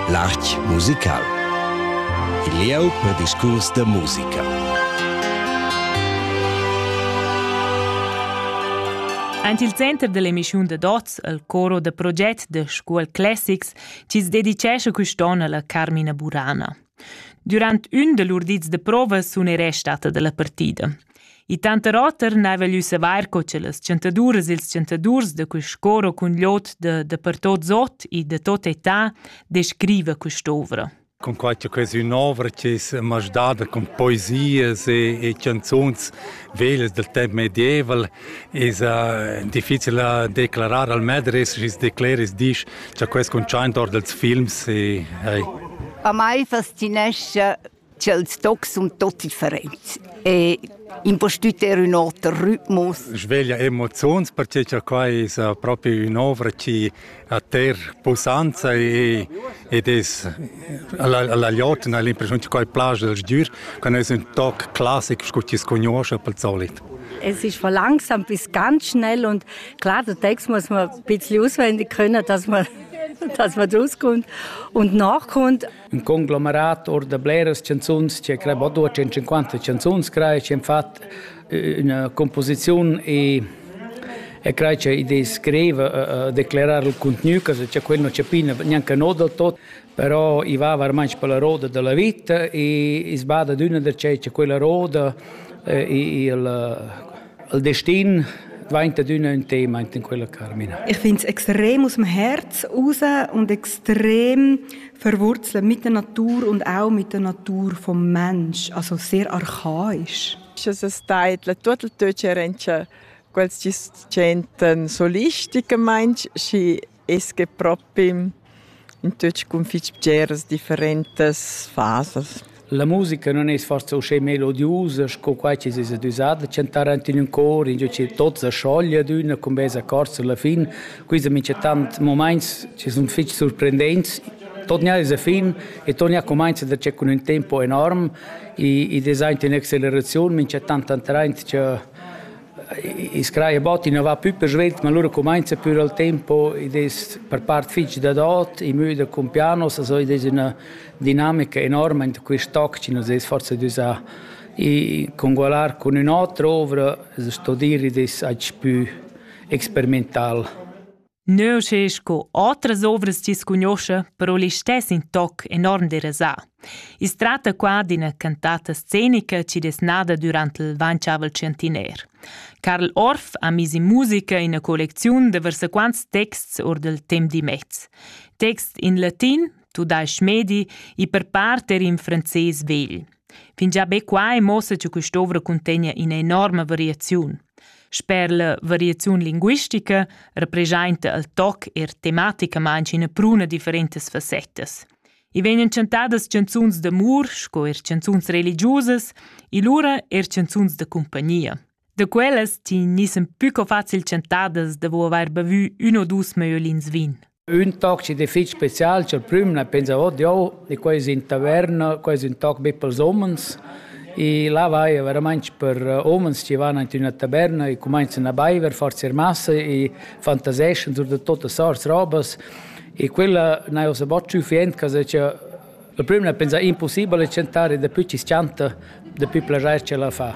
L'art musical. Il lieu per discurs da musica. Aint il center dell'emissiun da Dots, al coro da proget da Scuol Classics, ci dedicesce quest'on alla Carmina Burana. Durant ün da lur dis da prova sun ei restada dalla partida. I tanter oter n'haiva gnü savair co cha las chantaduras e ils chantadurs da quist cor o cun l'ot da da per tot Zot e da tot età descriva quest'ovra. Cunquai cha questa ün'ovra chi's m'ha dada cun poesias e e chanzuns vegl dal temp medieval esa difficil a declarar al medres schi's decleris disch cha quels cuntschaint or dals films e hey. A mai fascinescha ch'els tocs sun tot differents e impostüter ün oter rhythmus. Sveglia emoziuns perche cha quai esa propi ün'ovra chi ha ter pussanza e ed es alla alla glotna l'impressiun che quai plaja al sgür, quando es ün toc classic scu chi scugnuoscha pel solit. Es ist von langsam bis ganz schnell und klar, der Text muss man ein bisschen auswendig können, dass man dass man rauskommt und nachkommt. un conglomerat or da bleras canzuns che crei bod 250 canzuns crei che fat eh, una composizione e e crei che idee scrive eh, eh, declarar il contenuto che c'è quello c'è pina neanche no del tot però i va veramente per la roda della vita e sbada d'una da c'è quella roda eh, il Il destin vain ad üna ün tema enten quella Carmina. Ich finde es extrem aus dem Herz raus und extrem verwurzelt mit der Natur und auch mit der Natur vom Mensch, also sehr archaisch. Es ist teit, la tuot il töch rentscha quels chi sentan solistiche meinsch, chi es que propi in tuot cun fich bgeras differentas fasas. La musica non es forsa uschè melodiusa sco quai chi es adüsà da chantar aint in ün cor, ingio chi tot sa scioglia d'üna cun bels accords alla fin. Quista minchatant momaints chi sun fich surprendents. Torna alla fin e torna comincia da c'è cun ün tempo enorm. I, i design in acceleraziun, minchatant antraint cha i scraia bot i non va più per svelt ma loro comincia più al tempo ed è per part fitg da dot i müda con pianos also ed è una dinamica enorme in quest'oc ci nos es forse d'usar i congualar con ün otra ovra sto dir ed es aci più experimental Neu sche sco otras ovras ti cugnoscha, però listess in toc enorm derasà. I's tratta qua d'ina cantata scenica chi es nada durant il Vanciavel Centenaire. Karl Orff ha mis in musica ina collecziun da versaquants texts or del temp di mezz. Text in latin, tudais-ch medi, e per part er in franzés vegl. Fingià be qua è mossa che quest'ovra cuntegna ina enorma variaziun. Sper la variaziun linguistica representa il toc er tematicamain ina pruna differentas fassettas. I vegnan chantadas canzuns d'amur sco er canzuns religiusas e lura er canzuns da compagnia. Da quellas ti nissen più co facil chantadas da vo avair bavü uno o dus maiolins vin. Ün toc chi da fich special cha'l prüm na pensa ot jo, di quai es in taverna, quai es ün toc be pels umens e là vaia veramainch per umens chi van aint üna taverna e cumainzan a baiver, forsa eir massa e fantaseschan sur da tuotas sorts robas e quella n'haja ussa bod sufficient cha se cha il prüm l'ha pensà impussibel a chantar e dapü chi's chanta, dapü plaschair ch'ella fa.